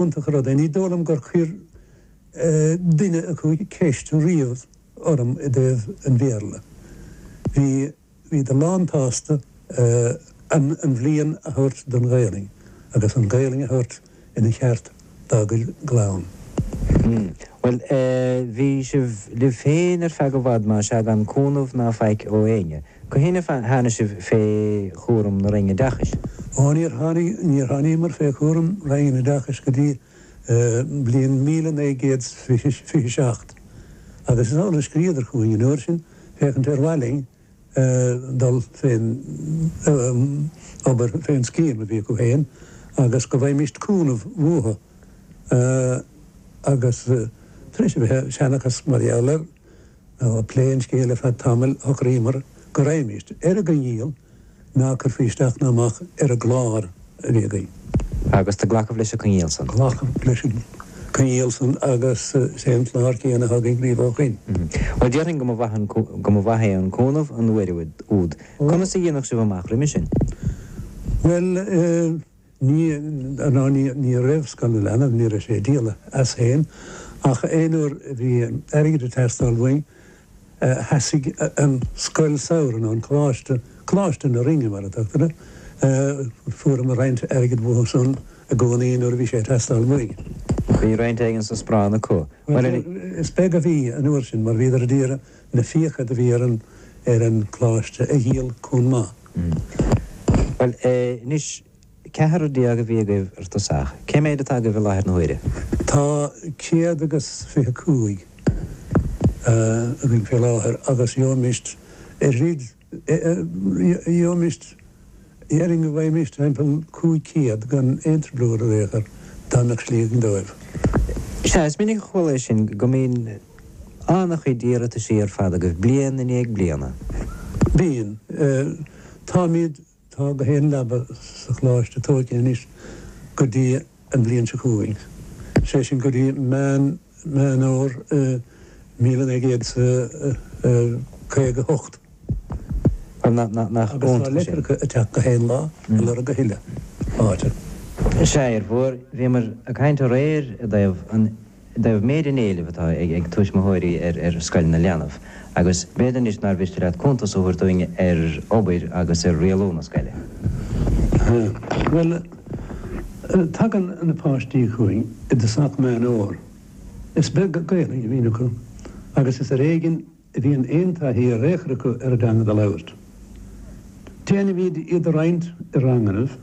iontach an rud é. Ní dóigh liom gur chuir duine acu ceist riamh orm i dtaobh an Bhéarla. Bhíodar lán-tsásta an bhliain a thabhairt don Ghaelainn agus an Ghaelainn a thabhairt ina cheart dá gclann. Bhuel, bhí sibh libh féin ar feadh i bhfad, má sea, gan cúnamh ná faic ó éinne. Cathain a tháinig sibh fé chúram na Roinne Oideachais? Ó, níor tháinig, níor thánaíomar fé chúram Roinn an Oideachais go dtí bliain míle naoi gcéad 's fiche, fiche seacht, agus is amhlaidh a scríodar chugainn an uair sin, féachaint ar mhaith linn dul fén obair, fén scéim a bhí acu fhéin, agus go bhfaighmist cúnamh uathu, agus tar éis a bheith ag seanchas mar gheall air. Ag plé an scéil ar feadh tamaill, shocraíomar go raghaimis ar an gcoinníoll ná cuirfí isteach ná amach ar an gclár a bhí againn. Agus do glacadh leis an gcoinníoll san. Glacadh leis an gcoinníoll san agus is é an clár céanna atá againn riamh ó shoin. Bhuel, déarfainn go mba mhaith é an cúnamh an uair úd. Conas a dhéanfadh sibh amach roimhe sin? Bhuel. Ní, ná ní, ní raibh scoil na leanbh, ní raibh sé a díol as féin, ach aon uair a bhí airgead ag teastáil uainn, sheasaigh an scoil samhraidh, nó an coláiste, Coláiste na Rinne mar a tugtar air, fuaireamar roinnt airgead uathu san i gcónaí nuair a bhí sé ag teastáil uainn. Bhí roinnt éigin sa sparán acu. Is beag a bhí an uair sin, mar bhíodar a d'iarraidh na fiacha do bhí ar an, ar an gcoláiste a dhíol chomh maith. Mh. Bhuel, eh, anois, ceathrar déag a bhí agaibh ar dtosach. Cé méid atá agaibh i láthair na huaire? Tá céad agus fiche cúig, eh, againn fé láthair agus gheobhaimist oiread Gheobhaimist, déarfainn go bhfaighimist timpeall cúig chéad gan aon trioblóid ar aon chor dá mbeadh slí againn dóibh. Sea, is minic a chuala é sin go mbíonn an-chuid iarrataisí ar fad agaibh bliain i ndiaidh bliana. Bíonn. Táimid. Tá gach aon leaba sa Choláiste tóigthe anois go dtí an bhliain seo chugainn, sé sin go dtí Meán Fhómhair míle naoi gcéad caoga hocht. Agus tá leitreacha ag teacht gach aon lá a lorg a thuilleadh áite. Sea, a Fhir Mhóir, bhíomar ag caint aréir i dtaobh an. dtaobh méid an éilimh atá ag tuismitheoirí ar Scoil na Leanbh agus b'fhéidir anois nár mhiste leat cuntas a thabhairt dúinn ar obair agus ar rialú na scoile. Bhuel, tagann na páistí chugainn i dtosach Meán Fhómhair. Is beag Gaelainn a bhíonn acu agus is ar éigin bhíonn aon taithí ar aon chor acu ar an dteanga do labhairt. Déanaimid iad a roinnt i rangannaibh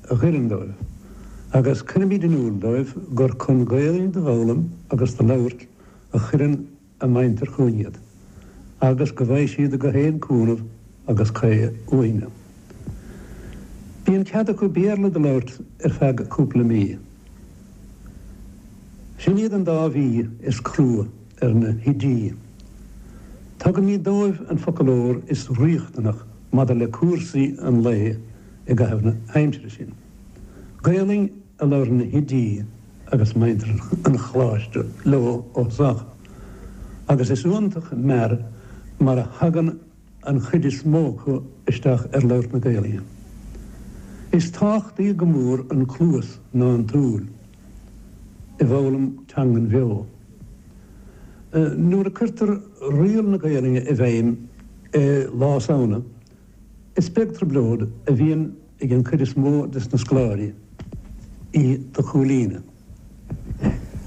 a oireann dóibh agus cuirimid in iúl dóibh gur chun Gaeilge do fhoghlaim agus do labhairt a chuireann a muintir chugainn iad agus go bhfaighidh siad gach aon chúnamh agus caoi uainne. Bíonn cead acu Béarla do labhairt ar feadh cúpla mí. Sin iad an dá mhí is crua. ar na hoidí. Tugaimid dóibh an foclóir is riachtanach maidir le cúrsaí an lae i gcaitheamh na haimsire sin. Gaelainn a labhrann na hoidí agus muintir an Choláiste leo ó thosach agus is iontach mear mar a thagann an an chuid is mó acu isteach ar labhairt na Gaelainne. Is tábhachtaí go mór an cluas ná an tsúil i bhfoghlaim teangan bheo. Nuair a cuirtear riail na Gaelainne i bhfeidhm i Lá Samhna, is beag trioblóid a bhíonn ag an gcuid is mó des na scoláirí í do chomhlíonadh.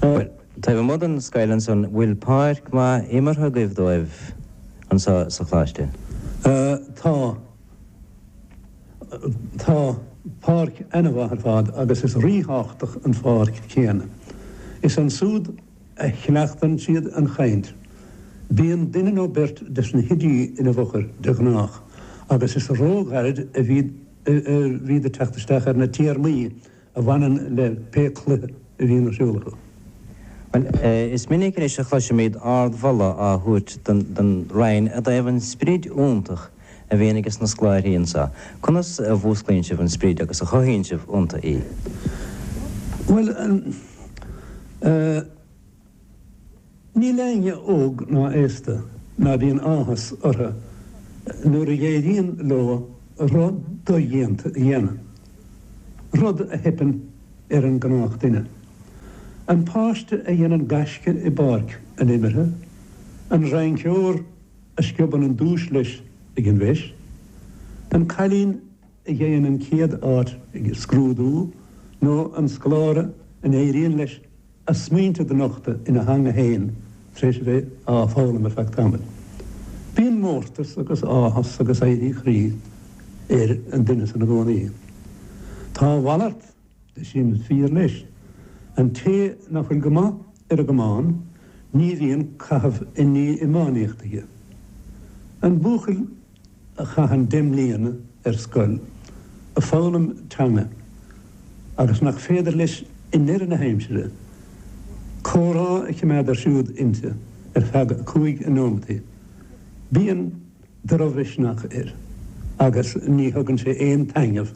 Bhuel, taobh amuigh den scoil ansan, bhfuil páirc mhaith imeartha agaibh dóibh anseo sa Choláiste? Tá. Tá páirc ana-mhaith ar fad agus is rí-thábhachtach an pháirc céanna. Is ansúd. a chleachtann siad an chaint. Bíonn duine nó beirt des na hoidí ina bhfochair de ghnách agus is róghairid a bhíd ag teacht isteach ar na téarmaí a bhaineann le pé cluiche a bhíonn ar siúl acu. Bhuel, is minic anois a chloisimid ardmholadh á thabhairt don Rinn i dtaobh an sprid iontach a bhíonn ages na scoláirthí anseo, conas a mhúsclaíonn sibh an sprid agus a chothaíonn sibh ionta í? Bhuel, eh, níl éinne óg ná aosta ná bíonn áthas orthu nuair a éiríonn leo rud dodhéanta a dhéanamh, rud a theipeann ar an gnách duine. An páiste a dhéanann gaisce i bpáirc an imeartha, an rinceoir, a sciobann an duais leis ag an bhFeis, an cailín a gheibheann an chéad áit ag scrúdú nó an scoláire a n-éiríonn leis a smaointe do nochtadh ina theanga fhéin tar éis a bheith á foghlaim ar feadh tamaill. Bíonn mórtas agus áthas agus éirí croí ar an duine san i gcónaí. Tá a mhalairt Sin fíor leis. An té nach bhfuil go maith ar an gcamán, ní bhíonn caitheamh i ndiaidh iománaíocht aige. An buachaill a chaitheann deich mbliana ar scoil a foghlaim teanga agus nach féidir leis i ndeireadh na haimsire comhrá a chimeád ar siúl inti ar feadh cúig nóimintí, bíonn drochmhisneach air agus ní thugann sé aon taitneamh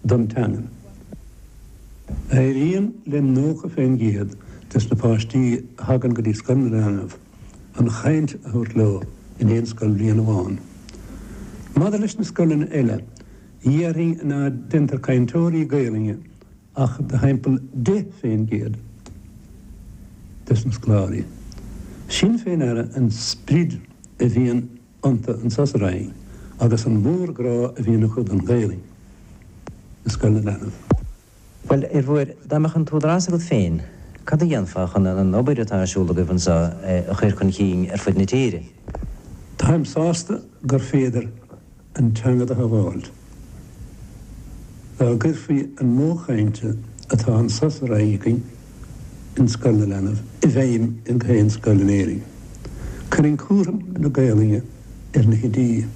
don teangainn. Éiríonn le nócha fé an gcéad des na páistí a thagann go dtí Scoil na Leanbh an chaint a thabhairt leo in aon scoilbhliain amháin. Maidir leis na scoileanna eile, déarfainn ná deintear cainteoirí Gaelainne ach de thimpeall 10 faoin gcéad des na scoláirí sin féin aireofá an sprid a bhíonn iontu annso sa Rinn agus an mhórghrá a bhíonn acu don Ghaelainn i scoil na leanbh. Bhuel, ar Fhir Mhóir dá mbeadh an t-údarás agat féin, cad a dhéanfá chun an obair atá ar siúl agaibh anseo a chur chun chinn ar fud na tíre? Táim sásta gur féidir an teanga do shabháilt. Dá gcuirfí an modh cainte atá annso sa Rinn againn in Scoil na Leanbh i bhfeidhm in gach aon scoil in Éirinn, cuirfinn cúram na Gaolainne ar na hoidí,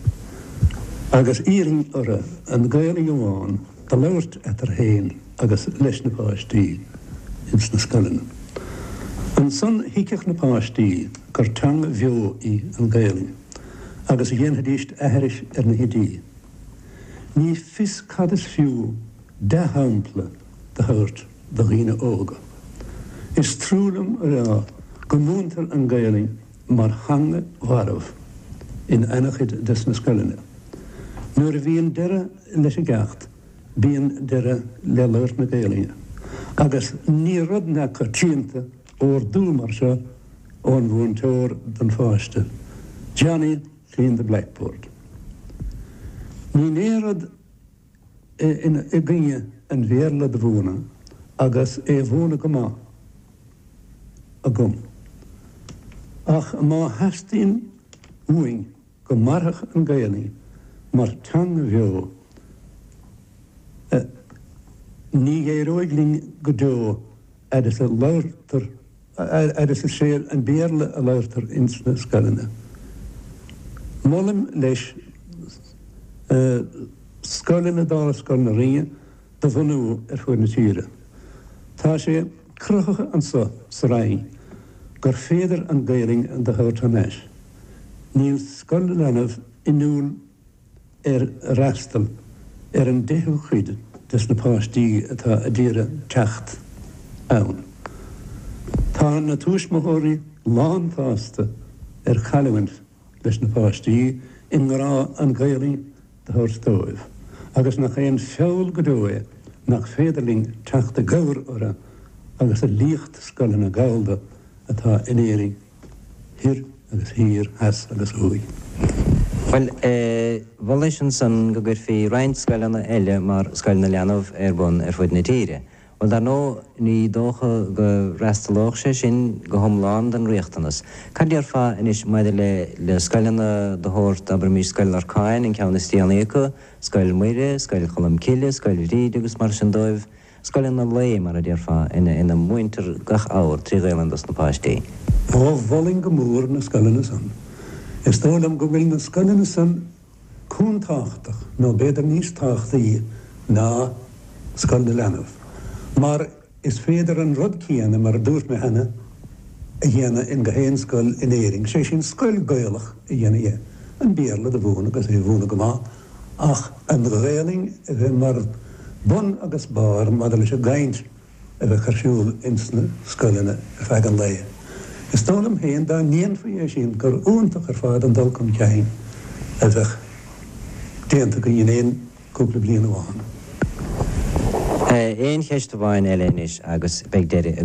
agus d'iarrfainn orthu an Ghaolainn amháin do labhairt eatarthu fhéin agus leis na páistí ins na scoileanna. Ansan thuigfeadh na páistí gur teanga bheo í an Ghaolainn. agus dhéanfaidís aithris ar na hoidí. Ní fios cad is fiú dea-shampla do thabhairt do dhaoine óga. Is trua liom a rá go múintear an Gaelainn mar theanga mharbh in ana-chuid des na scoileanna. Nuair a bhíonn deireadh leis an gceacht bíonn deireadh le labhairt na Gaelainne agus ní rud neamhchoitianta ordú mar seo ón mhúinteoir don pháiste, Johnny clean the blackboard. Níl aon rud i gcoinne an Bhéarla do mhúineadh agus é a mhúineadh go maith agam. Ach má theastaíonn uainn go mairfeadh an Gaelainn mar theanga bheo, ní éireoidh linn go deo. fhaid is gurb é an Béarla a labhartar ins na scoileanna. Molaim leis scoileanna dála Scoil na Rinne do bhunú ar fuaid na tíre. Tá sé cruthaithe annso sa Rinn gur féidir an Gaelainn do thabhairt thar n-ais. Níl Scoil na Leanbh inniúil ar fhreastal ar an deichiú cuid des na páistí atá a d'iarraidh teacht ann. Tá na tuismitheoirí lánsásta ar chailliúint leis na páistí i ngrá an Ghaelainn do thabhairt dóibh agus nach aon feall go deo é seo nach féidir linn teacht i gcabhair orthu agus a líocht scoileanna Gallda atá in Éirinn Thoir agus Thiar, Theas agus Thuaidh. Bhuel, eh, mholfainn ansan go gcuirfí roinnt scoileanna eile mar Scoil na Leanbh ar bun ar fud na tíre. Bhuel, dar ndóigh, ní dócha go bhfreastalódh sé sin go hiomlán don riachtanas. Cad déarfá anois maidir le, le scoileanna de shórt, abraimis, Scoil Lorcáin, an ceann is déanaí acu, Scoil Mhuire, Scoil Cholm Cille, Scoil Bhríde agus mar sin de, Scoileanna lae, mar a déarfá, ina múintear gach abhar trí Ghaelainn dos na páistí. Ó, mholfainn go mór na scoileanna san. Is dóigh liom go bhfuil na scoileanna san chomh tábhachtach, nó b'fhéidir níos tábhachtaí ná Scoil na Leanbh, mar is féidir an rud céanna, mar a dúirt mé cheana, a dhéanamh in go haon scoil in Éirinn, sé sin, scoil Gaelach a dhéanamh de, an Béarla do mhúineadh agus é a mhúineadh go maith, ach an Ghaelainn a bheith mar bun agus barr maidir leis an gcaint a bheadh ar siúl ins na scoileanna ar feadh an lae. Is dóigh liom féin dá ndéanfaí é sin gur iontach ar fad an dul chun cinn a bheadh déanta againn in aon chúpla bliain amháin. Aon cheist amháin eile anois agus beidh deireadh againn.